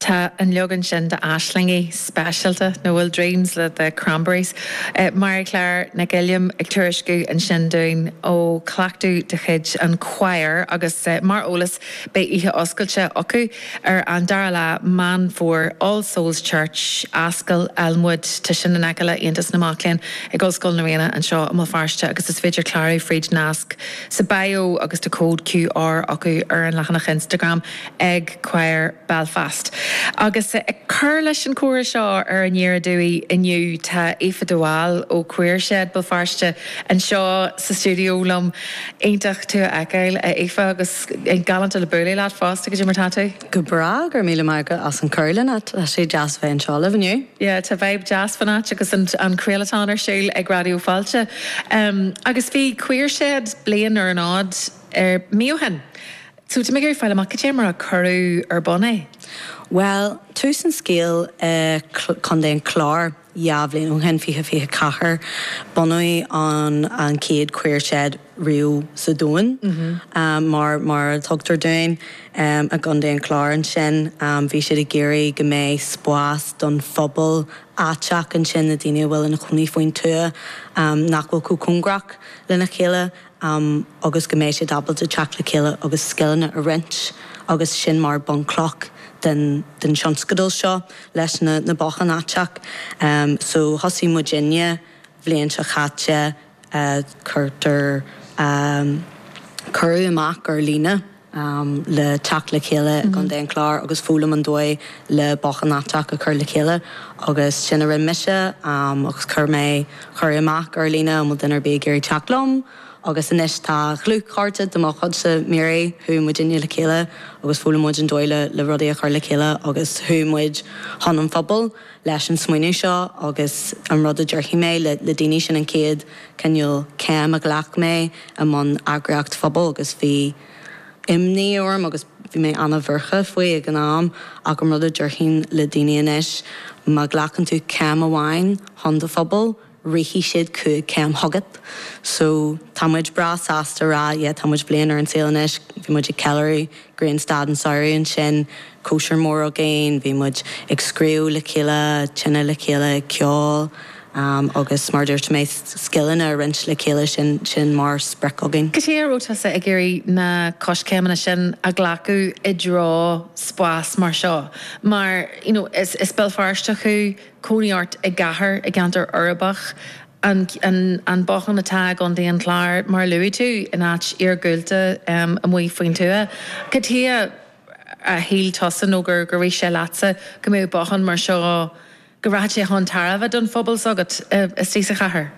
Tá an leagan sin d'Aislingí speisialta nó Dreams le The Cranberries. Marie Claire Nic Uilliam ag tuairisciú ansin dúinn ó chleachtadh de chuid an chóir agus mar eolas beidh oíche oscailte acu ar an 2ú lá Meán Fómhair, All Souls Church, Ascaill Elmwood, tá sin in aice le Aontas na Mac Léinn ag Ollscoil na Ríona anseo i mBéal Feirste agus is féidir clárú fríd nasc sa bio agus tá cód QR acu ar an leathanach Instagram ag Quire Belfast. Agus ag cur leis an chomhrá seo ar An Deireadh Dáil inniu tá Aoife de Bhál ó Queer Shed Béal Feirste anseo sa stiúideo liom. Iontach tú a fheiceáil a Aoife agus galánta le bualadh leat fosta, cad é mar atá tú. Go breá, go raibh míle maith agat as an chuireadh chun na háite. Tá sé deas bheith anseo libh inniu. Yeah, tá vibe deas fán áit agus an craolatón ar siúl ag Raidió Fáilte. Agus bhí Queer Shed bliain ar an fhód ar mí ó shin. So tá muid ag iarraidh fáil amach cad é mar a cuireadh ar bun é. Bhuel, tús an scéil i Co. an Chláir. Dhá bhliain ó shin, 2024, bunaíodh an an chéad Queer Shed riamh sa domhan, mar mar a thuigtear dúinn, i gContae an Chláir. Ansin, bhí siad ag iarraidh go mbeadh spás don phobal aiteach ansin, na daoine a bhfuil ina chónaí faoin tuath, nach bhfuil chomh cóngarach lena chéile. am agus go mbeidh siad ábalta teacht le chéile agus scileanna a roinnt agus sin mar bunchloch den den tionscadal seo leis na na botháin aiteacha em so thosaigh muid inne bliain seo chaite eh cuirtear em cuireadh amach ar líne am le teacht le chéile i gContae an Chláir agus foghlaim an dóigh le bothán aiteach a chur le chéile. Agus sin a rinne mise agus chuir mé cuireadh amach ar líne an bhfuil duine ar bith ag iarraidh teacht liom. Agus anois tá dlúthchara de mo chuidse, Mary, chuaigh muidinne le chéile agus d'fhoghlaim muid an dóigh le rudaí a chur le chéile agus chuaigh muid chun an phobail leis an smaoineamh seo agus an rud a déarfaidh mé le daoine sin an chéad cineál céim a ghlac mé i mbun eagraíocht pobail agus bhí imní orm agus bhí mé an-bhuartha faoi ag an am ach an rud a déarfainn le daoine anois, má ghlacann tú céim amháin chun do phobail, rithfidh siad cúig céim chugat. So, tá muid breá sásta a rá yeah tá muid bliain ar an saol anois, bhí muid ag ceiliúradh grianstad an tsamhraidh ansin, cóisir mór againn, bhí muid ag scríobh le chéile, tine le chéile, ag ceol. Agus mar a dúirt mé, scileanna a roinnt le chéile, sin mar sprioc againn. Cad chuige a raibh tusa ag iarraidh na coiscéimeanna sin a ghlacadh i dtreo spás mar seo? Mar, you know, is is Béal Feirsteach thú, cónaí ort i gcathair, i gceantar uirbeach, an an bothán atá agam don chlár, mar a luaigh tú, in áit iargúlta amuigh faoin tuath. Cad chuige ar shíl tusa nó gur rith sé leatsa go mbeadh bothán mar seo, go rachadh sé chun tairbhe don phobal s'agat istigh sa chathair.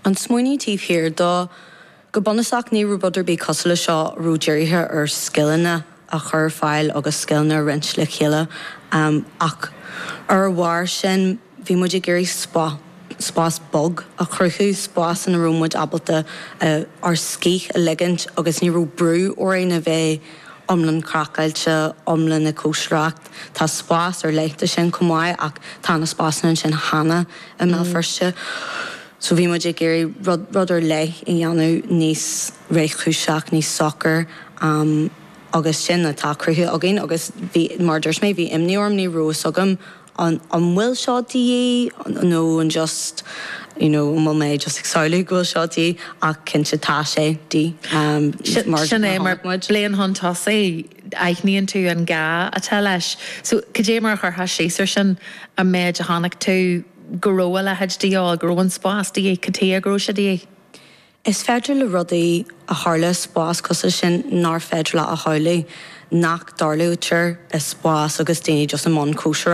An smaoineamh taobh thiar dó, go bunúsach, ní raibh rud ar bith cosúil leis seo a raibh dírithe ar scileanna a chur ar fáil agus scileanna a roinnt le chéile ach ar a bharr sin bhí muid ag iarraidh spás bog a chruthú, spás ina raibh muid ábalta ár scíth a ligint agus ní raibh brú orainn a bheith iomlán craiceáilte, iomlán ag cóisireacht. Tá spás ar leith do sin chomh maith ach tá na spásanna ansin cheana i mBéal Feirste so bhí muid ag iarraidh rud, rud ar leith a dhéanamh níos réchúiseach, níos socair agus sin atá cruthaithe againn agus bhí, mar a dúirt mé, bhí imní orm, ní raibh fhios agam an, an bhfuil seo de dhíth nó an just, you know, an bhfuil mé just ag samhlú go bhfuil seo de dhíth ach cinnte tá sé de dhíth mar a chonaic muid. Sin é mar Bléan Hunt Hussey. aithníonn tú an gá atá leis. So, cad é mar a chuirfeá síos ar sin, an méid a chonaic tú go raibh a leithéid de dhíobháil, go raibh an spás de dhíth, cad chuige go raibh sé de dhíth? Is féidir le rudaí a tharlú i spás cosúil sin nár féidir leo a tharlú, nach dtarlaítear i spás agus daoine just i mbun cóisireacht.